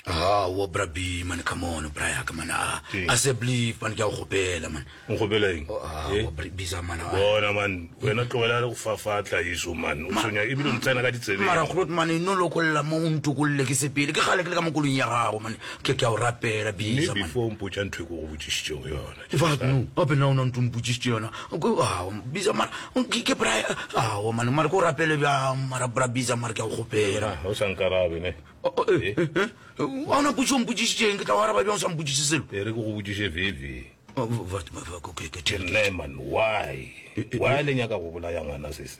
Ah, wa bra B man come on bra ya ka man ah Ke- a se believe man ke a go gopela man nkgopela eng Oh, ah, Eh? wa bra B za man ah. bona man wena tlogela le go fafatla eso man o Ma- tshwenya ebile o ntsena ka ditsebeng mara kgolot man e no lokolla mo o ntokolle ke sepele ke gale ke le ka mo kolong ya gago man ke ke a o rapela B mme za man before o mpotša ntho e ko go botšišitšego yona Ke fa no gape na o na ntompotsisitse yona bisa mara ke bra ao mane mare ko rapele bjang mara bra bisa mare ke a go kgopela ah, o sa nkarabe ne a oh, oh, eh, eh? eh, eh. ona potso mpotsisitseng ke tla go araba bjang o sa mpotsise selo e re ke go botsise veve oh, ke nna man why why le nyaka go bolaya ngwana sese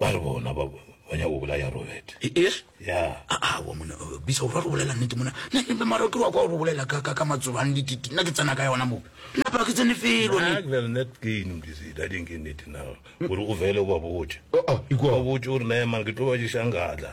Ba re bona ba ba nyaka go bolaya Robert. Eeg? Ya. A a wa mona uh, bisa o ra go bolela nnete mona. Na ke mara ke wa kwa go bolela ka ka ka matsoba le dititi. Na ke tsena ka yona mo. Na ba ke tsene felo ne. Na ke bel net ke ino ke se da ding ke nnete na. Gore o vele o ba botse. A a ikwa. Ba botse o re na emang ke tlo ba je shanga tla.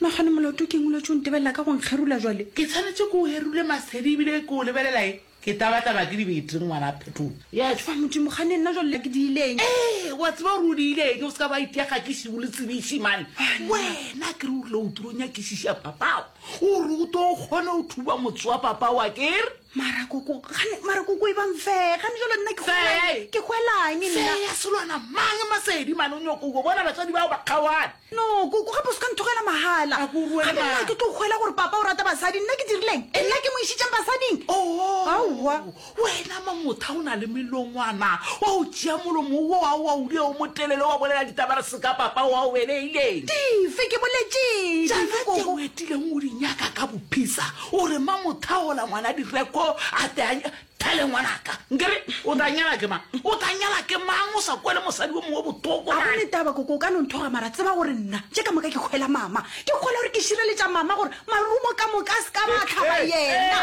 Magane moloto ke eng o letše o ntebelela ka go nkgerula jwale? Ke tshwanetše ke o gerule masedi ebile ke o lebelela e? Ke tabataba ke dibete ngwana Phetola. Ya tšwa Modimo gane nna jwale le ke di ileng. Ee wa tseba gore o di ileng o se ka ba itiaga ke šibu le tsebiši mane. Wena ke re o rile o tlo nyakišiša papao gore o tlo kgone o thuba motse wa papao a kere. mara koko gane mara koko e bang fee gane jalo nna ke Fee. ke hwelang nna Fee ya selwana mang masedi mane o nyoko ubo bona batswadi bao ba kgaoane no koko gape o se ka nthogela mahala A ko o ruele gape nna mahala. ke tlo hwela gore papa o rata basadi nna ke dirileng e nna ke mo išitseng basading Aowa. Oh, wena mamotha o na le melongwana wa o tšea molomo wo wa wa o dio mo telele wa bolela ditaba re seka papa wa o beleileng dife ke boletseng jaana tše o etileng o di nyaka ka bophisa O re ma mo thagola ngwana direko a te a thale ngwanaka nkere o tla nyala ke mang o tla nyala ke mang o sa kwele mosadi o mongwe botoko a gone taba koko o ka no nthoga mara tseba gore nna tše ka moka ke kgwela mama ke kgwela gore ke šireletša mama gore marumo ka moka a se ka ba tlhaba yena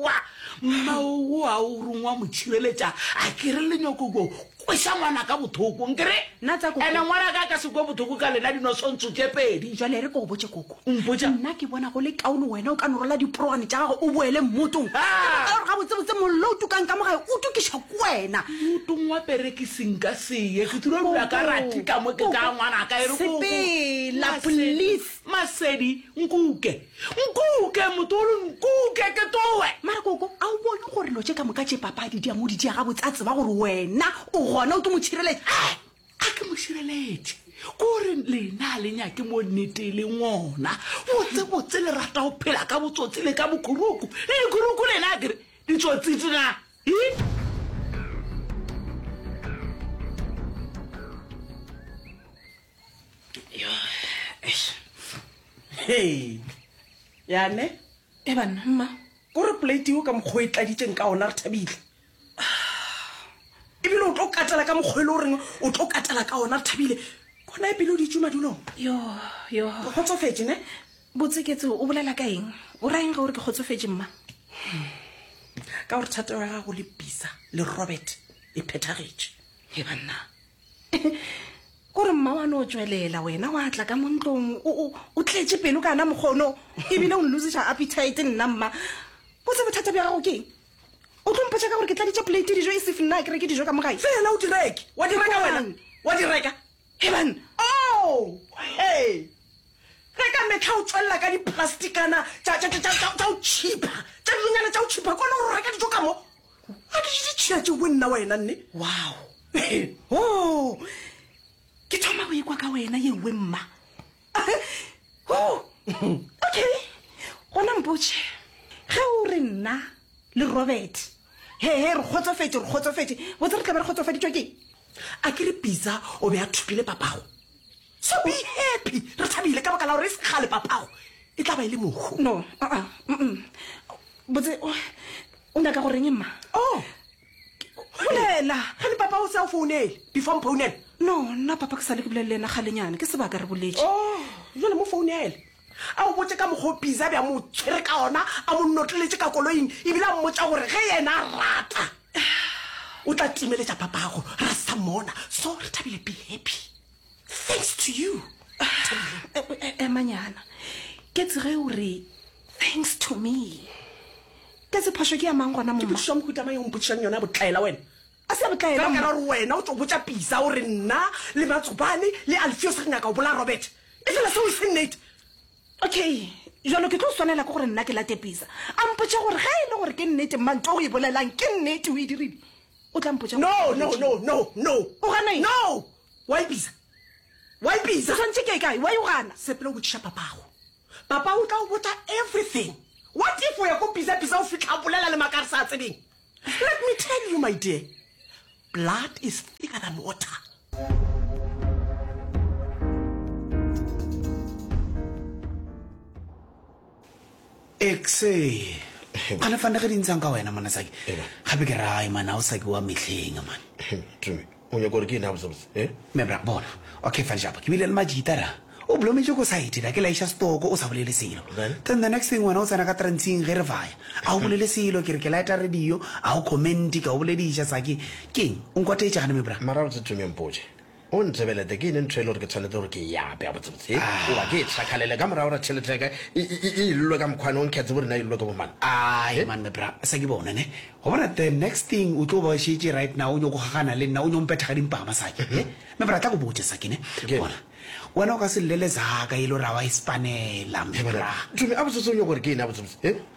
wa mma o a o rongwa mo tšhireletša a kere lenyokoko Kweša ngwana ka bothoko nkere Nna tsa koko. ene ngwana ka ka se kwe bothoko ka lena dinosontso tše pedi jwale re ko go botše koko O mpotša? nna ke bona go le kaone wena o ka norola diporogane tša gago o boele mmotong ka Ah! baka ya gore gabotsebotse mollo o tukang ka mo gae o tukišwa ke wena motong wa perekiseng ka seye ke tlo dula ka rathika mo ke tla ngwana ka e re Koko, Sepela, Masedi, please. masedi nkuke Nkuke, motolo, nkuke ke tloe! Makoko, a o bone gore lo tše ka moka tše papadi di a mo di dia gabotse a tseba gore wena o gona o ke mošireletši? He! A ke mošireletši? Kore lena a le nyake mo nnete le ngona. Botsebotse le rata go phela ka botsotsi le ka bokhuruku. Le dikhuruku lena a kere ditsotsitsi na? Hi! Hey, yane e banna mma ko re polate eo ka mokgwa e tladitseng ka ona re thabile ebile o tlo katela ka mokgwa e le o reng o tlo katela ka ona re thabile kona e pele o ditsu madulong yo yo ke kgotsofetse ne botseketse o bolela ka eng o raeng ga o re ke kgotsofetse mma ka gore thatego ya gago le pisa le robert e phethagetše e banna kore mma wa no tswelela wena wa tla ka mo ntlong o tletše pelo ka na mokgono ebile o nlosiša appetite nna mma botse bothata bja gago keng o tlo mpotša ka gore ke tladitše plate dijo e sef nna ke reke dijo ka mogae fela o direke wa direka wena wa direka heban o he ge ka metlha o tswelela ka diplasticana tša o chipa tša dinonyana tša o chipa kone o reka dijo ka mo A ke je ditšhila tšeo bo nna wena nne. Wow. Oh. Ke thoma go ikwa ka wena ye nngwe mma. Oh. Okay. Gona mpotše. Ge o re nna le Robert. He he re kgotsofetše re kgotsofetše. Botse re tla be re kgotsofaditšwa ke. A ke re Pitsa o be a thopile papago. So be happy. Re thabile ka baka la gore e se kgale papago e tla ba e le mohu. No. Uh-uh. Mm-mm. Botse. o nyaka go reng mma oh bolela ga le papa o se a founele before mpounele no nna papa ke sa le ke bolele le ena galenyana ke sebaka re boletse oh jale mo founele a o botse ka mokgwa o biza bja mo tshwere ka ona a mo nnotleletse ka koloing ebile a mmotsa gore ge yena a rata o tla timeletša papago ra sa mona so re thabile be happy thanks to you emanyana ke tsege o re thanks to me ka se phoso ke ya mang gona mosa mohutamang yo mpotšišang yona botlaela wena a se botlaela ka gore wena o tso botša pisa o re nna le matsobane le alfios re nyaka o bola robert e fela seo e se nnete okay jalo ke tlo swanela ke gore nna ke late pisa a mpotša gore ge e le gore ke nnete manto o e bolelang ke nnete o e dirile o tla mpotša no no no no no o gana no Wa ipitsa? Wa ipitsa? O swantše ke kae? Wa igana? Sepela o botšiša papago. Papa o tla o botša everything. What if o ya ko pitsa pitsa o fihla bolela le maka re sa tsebeng? Let me tell you my dear, blood is thicker than water. exe gane fane ge di ntshang ka wena mona saki gape ke rae mana o saki wa metlheng mane tumi o nyako gore ke ena botsebotse e mebra bona okay fane japa ke bile le majita ra o blometse ko site ra ke laisha stoko o sa bolele selo then the next thing wena o tsena ka transing ge re vaya a o bolele selo ke re ke laeta radio a o commenti ka o boledisha saki keng o nkwateetše gane mebra mara botse tumi mpotše O ntebelete, ke ene ntho e le gore ke tshwanetse gore ke e ape, gabotsebotse, e, goba ke e tlhakgalele ka morago gore tšhelete ya ka e, e, e, e illwe ka mokgwane o nkgetse bo rena e illwe ke bomang. Aai, man, me bra, sa ke bona, ne? Go bona the next thing o tlo ba šetše right now, o nyoko gagana le nna, o nyo mpetha ga dimpa ga masaki, ne? Me bra, tla go botša sa ke, ne? Ke. Bona, wena o ka se llele zaka e le gore ga wa e spanela, me bra. Tumi, gabotsebotse o nyoko gore ke ene, gabotsebotse, e?